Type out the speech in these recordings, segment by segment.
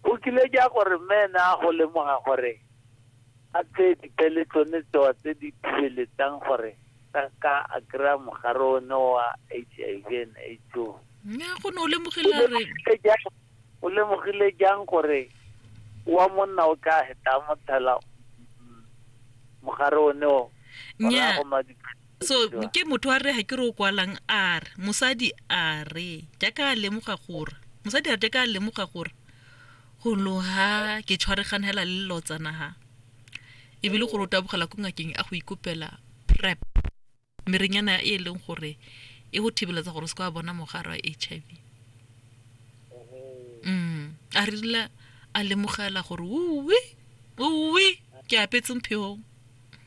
Go kile ja gore mme ene a go lemoga gore a tseye dipele tsone tsewa tse di thibeletsang gore ka ka a kry-a mogare o ne wa h i v and aids o nya go ne o lemogela re Lemogile jang- o lemogile jang gore wa monna o ka heta a mo tshela mm, mogare o ne o Nnyaa. go madipelo so ke motho a re ga ke re o kwalang a re mosadi a re jaaka a lemoga gore mosadi a re jaaka a lemoga gore go loga ke tshwaregana hela le lotsana ha e bile gore o tabogela ko ngakeng a go ikopela prep merenyana e e leng gore e go thibeletsa gore o se ka wa bona mogare wa h i v mm a re rile a lemogela gore uwe uwe ke apetse mphegong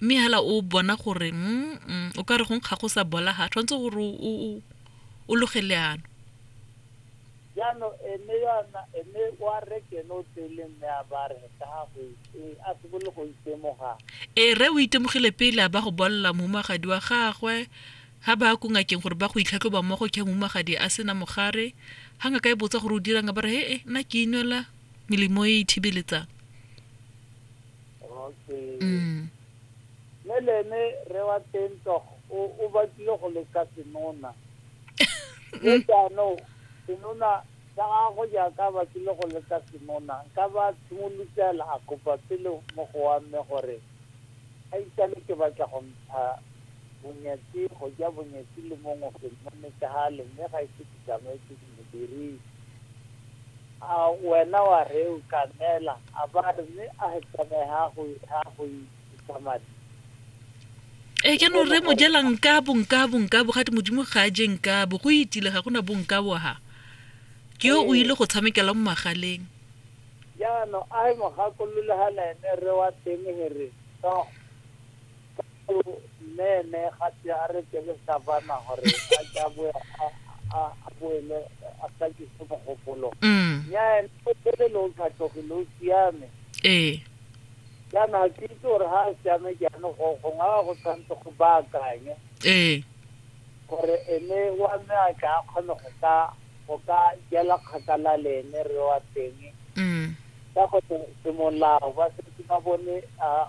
mme hala o bona gore mm, o ka re go nkga go sa bola ga tshwanetse gore o loge leano jaanong ene yona ene wa rekene o tsele mme a ba re ka gago e a sebole go itemoga ee re o itemogile pele a ba go bolela momagadi wa gagwe ga ba ko ngakeng gore ba go itlhatlhoba mmogo ke momagadi a sena mogare ga ngaka e botsa gore o dirang ba re he e nna ke inwela melemo e e thibeletsang okay mm. mme le ene re wa teng tog o batlile go leka senona le mm. jaanong senona sa gago jaaka batlile go leka senona ka ba tshimolotela a kopa pele mo go wa mme gore a itane ke batla go ntsha bonyatsi go ja bonyatsi le mongwe ke mmone ka gale mme ga e se ke tsamaetse ke Modirisi, A wena wa rre o ka neela a ba re mme a he tsamaye ha go ha go isa madi. Ee jaanong rre mojela nkabo nkabo nkabo ga te modimo ga a je nkabo go itile ga gona bonkabo ha ke yo o ile go tshamekela mo magaleng Jaanong a he mogakolole ga na ene rre wa teng he re, Tsogo. mmeme ga se a re ke le savana gore a ke a boe a- a- a boele a tlakise mogopolo mm nya ene o tsele lo tlhatlogile o siame ee jaana ga ke itse gore ga a siame jaane go gongwe a go tshwanetse go baakanye ee gore ene wa me a tla kgone go ka go ka jela kgakala le ene re wa teng mm ka go semolao ba setse ba bone a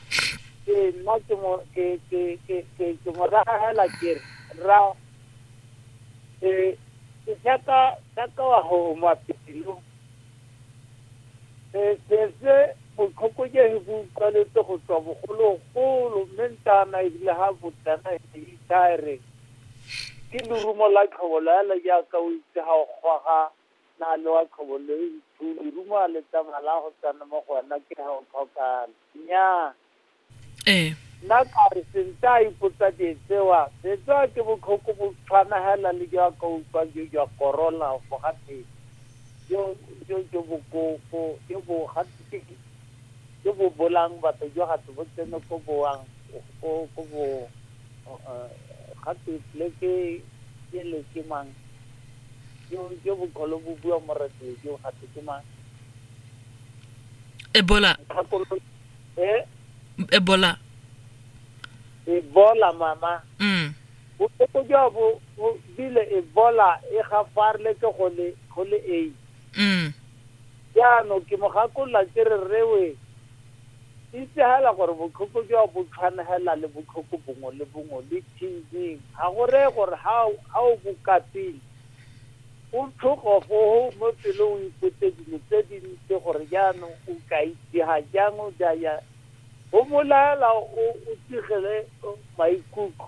ke nna ke mo ke ke ke ke ke mo raya hela ke re ra e ke tsaka tsaka wa ho mo apelo e se se go tlhokoje he go utlwaletse go tswa bogolo golo mme ntana e bile ha botana e ne e tare ke lerumo la tlhobo la le ja ka o itse ha o gwaga na le wa tlhobo le ntho lerumo a le tsamala go tsana mo go wena ke ha o tlhokana Nnyaa. Ee. Nna ka re sente a ipotsa die tsewa, setswa ke botlhoko bo tshwana hela le jo a ka utlwa jo jwa korola go gate jo jo jo bokoko jo bo gate jo bo bolang batho jo gate bo tsene ko boang ko ko bo gate le ke ke le ke mang jo jo bokholo bo bua moretele jo gate ke mang ebola Kgakolo- eh, ebola ebola mama mm botlhoko jwa bo bo bile ebola e gafareletse go le go le ei mm jaanong ke mo gakolola ke re rewe itse hela gore botlhoko jwa bo tshwanela le botlhoko bongwe le bongwe le tv ga go reye gore ha o- ha o bokapile Go tlhogo go go mo pelong o ipotse dilo tse dintsi gore jaanong o ka itsega jang o ja jang. Go mo laela o o tsigele maikutlo.